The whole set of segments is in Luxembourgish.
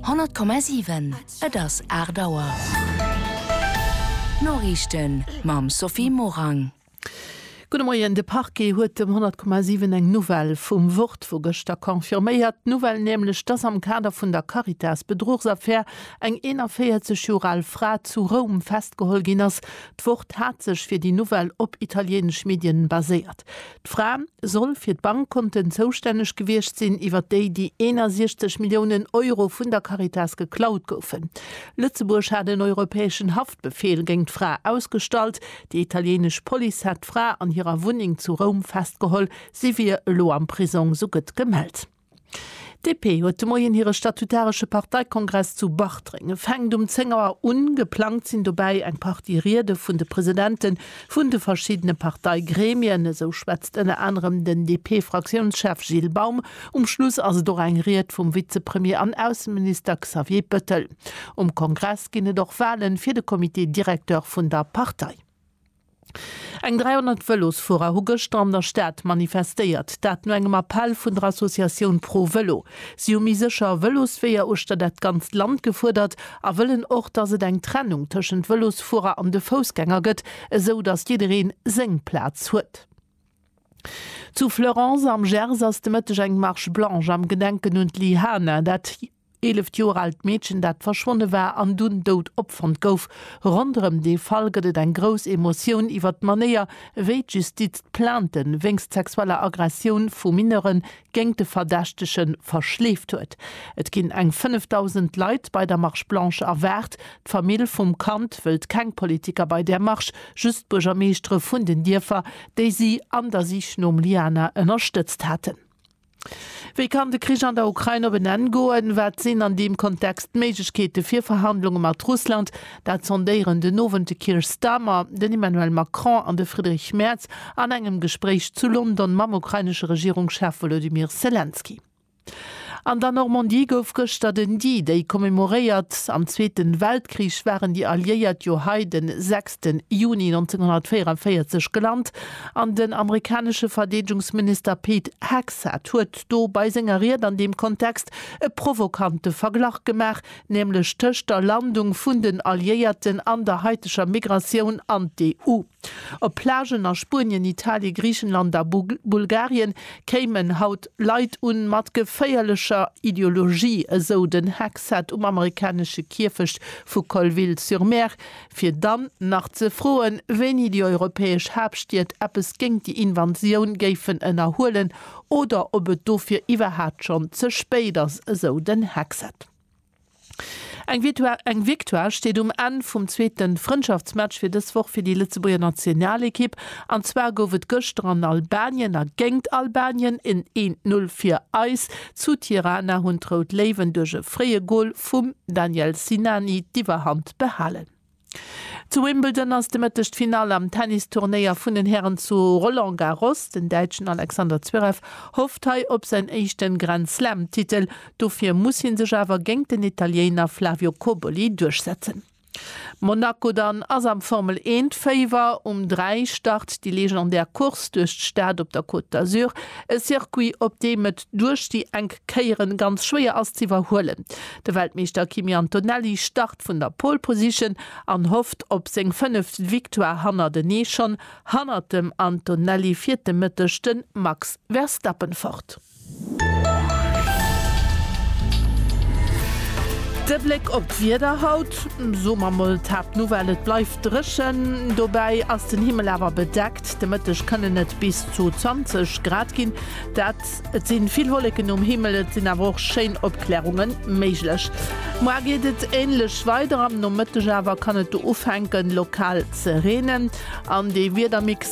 100,7 Et ass 8 Auer. D'Noriichten mam Sophie Morang. Gudde Moien, De Parquet huet dem 100,7 eng Nouvelle vum Wort vu gëschter confirméiert. D'Nouvelle nämlech, dass am Kader vun der Caritas-Bedruchsaffär eng 41 Joer al Fra zu Roum festgeholl ginn ass. D'Wort hat sech fir déi Nouvelle op italieenesch Medien baséiert. D'Fra soll fir d'Bankkonten zoustänneg gewiescht sinn, iwwer déi déi 61 Milliounen Euro vun der Caritas geklaut goufen. Lëtzebuerg hat en europäeschen Haftbefeel géint d'Fra ausgestallt. Déi italieenesch Police hat d'Fra an hirer Wunneng zu Roum festgeholl. Si wier elo am Prisong, sou gëtt gemellt. DP huet de Moien hire statutaresche Parteikongress zu Bartreng. E fänkt um 10 Auer un. Geplangt sinn dobäi eng Partie Riede vun de Presidente vun de verschiddene Parteigremien. Esou schwätzt ënner anerem den DP-Fraktiounschef Gilles Baum. Um Schluss ass et och eng Ried vum Vizepremier an Ausseminister Xavier Bettel. Um Kongress ginn et och Wale fir de Comité directeur vun der Partei. Eng 300 Vëlosfuerer hu gëschter an der Stad manifestéiert, dat no engem Appell vun der Associatioun Pro Vëlo. Si hu méi sécher Vëlosweeër uechter dat ganzt Land gefuerdert a wëllen och, datt et eng Trennung tëschent Vëlosfuerer an de Foussgänger gëtt, esou datt jiddereen seng Plaz huet. Zu Fleurance am Gers ass de Mëtteg eng Marche blanche am Gedenken un d'Li Hana, dat Eeleft Joer aalt Meedchen, dat verschwonne war an dunn dout opfonnt gouf. Ronderëm dee Fall gëtt et eng grouss Emotioun iwwert d'Manéier, wéi d'Justiz d'Plainte wéinst sexueller Aggressioun vu Mineure géint de Verdächtege verschleeft huet. Et ginn eng 5.000 Leit bei der Marche Blanche erwaart. D'Famill vum Kand wëllt keng Politiker bei där Marsch, just d'Buergermeeschtere vun den Dierfer, déi si an der Sich nom Liana ënnerstëtzt haten. Wéi kann de Krich an der Ukrain op en Enn goen? Wat sinn an deem Kontext d'Méiglechkeete fir Verhandlunge mat Russland? Dat sondéieren den Owend de Keir Starmer, den Emmanuel Macron an de Friedrich Merz an engem Gespréich zu London mam ukrainesche Regierungschef Wolodymyr Selenskyj. An der Normandie gouf gëschter den D-Day commemoréiert. Am Zweete Weltkrich waren déi Alliéiert jo hei de 6 Juni 1944 gelant. An den amerikanesche Verdeedgungsminister Pete Hegseth huet do bei senger Ried an deem Kontext e provokante Verglach gemaach, nämlech tëscht der Landung vun den Alliéierten an der haiteger Migratioun an d'EU. Op Plagen a Spuenien, Italien, Griichenland a Bulgarien kéimen haut Leit un, mat geféierlecher Ideologie, esou den Hegseth um amerikanesche Kierfecht vu Colville-sur-Mer, fir dann nach ze froen, wéini déi europäesch Haaptstied eppes géingt déi Invasioun géifen ënnerhuelen oder ob et dofir iwwerhaat schonn ze spéit ass, esou den Hexet. Eng Victoire steet um Enn vum zweete Frëndschaftsmatch fir dës Woch fir déi Lëtzebuerger Nationalekipp. An zwar gouf et gëschter an Albanien a géingt Albanien en 1, 0 fir eis. Zu Tirana hunn d'Rout Léiwen duerch e fréie Gol vum Daniel Sinani d'Iwwerhand behalen. Zu Wimbledon ass de Mëtteg d'Finall am Tennisturnéier vun den Hären zu Roland Garros. Den Däitschen Alexander Zverev hofft hei op säin éischte Grand-Slam-Titel. Dofir muss hie sech awer géint den Italiéiner Flavio Cobolli duerchsetzen. Monaco dann ass am Formel eent Féiwer. Um 3 start déi legendär Course duerch d'Stad op der Côte d'Azur, e Circuit op deem et duerch déi enk Kéieren ganz schwéier ass ze iwwerhuelen. De Weltmeeschter Kimi Antonelli start vun der Pole Position an hofft op seng fënneft Victoire hannertenee. Schonn hannert dem Antonelli fiert de Mëtteg de Max Verstappen fort. De Bléck op d'Wieder haut, soe mer mol Tap Nouvelle, et bleift dréchen, dobäi ass den Himmel awer bedeckt. De Mëtteg kënnen et bis zu 20 Grad ginn, dat et si vill Wolleken um Himmel, et sinn awer och schéin Opklärunge méiglech. Moar geet et änlech weider, am Nomëtteg awer kann et do ufänken lokal ze reenen an dee Wiedermix,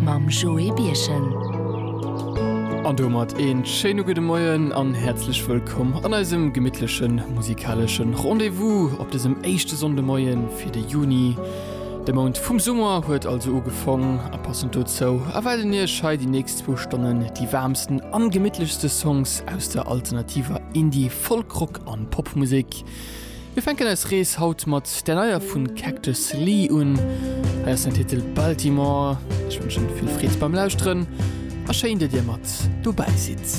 mam Joé Birchen. An domat een schéine gudde Moien an häerzlech wëllkomm an eisem gemittlechen musikaleschen Rendez-vous op dësem éischte Sonndemoien fir de Juni. De Mount vum Summer huet also ugefong a passend dozou erwaarden iech hei déi nächst zwou Stonnen déi waarmsten an gemittlechste Songs aus der alternativer Indie-, Folk-, Rock an Popmusek. Mir fänken eis Rees haut mat där neier vun Cactus Lee un. Hei ass den Titel Baltimore. Ech wënschen vill Freed beim Lauschteren a schéin dat dir mat dobäi sidd.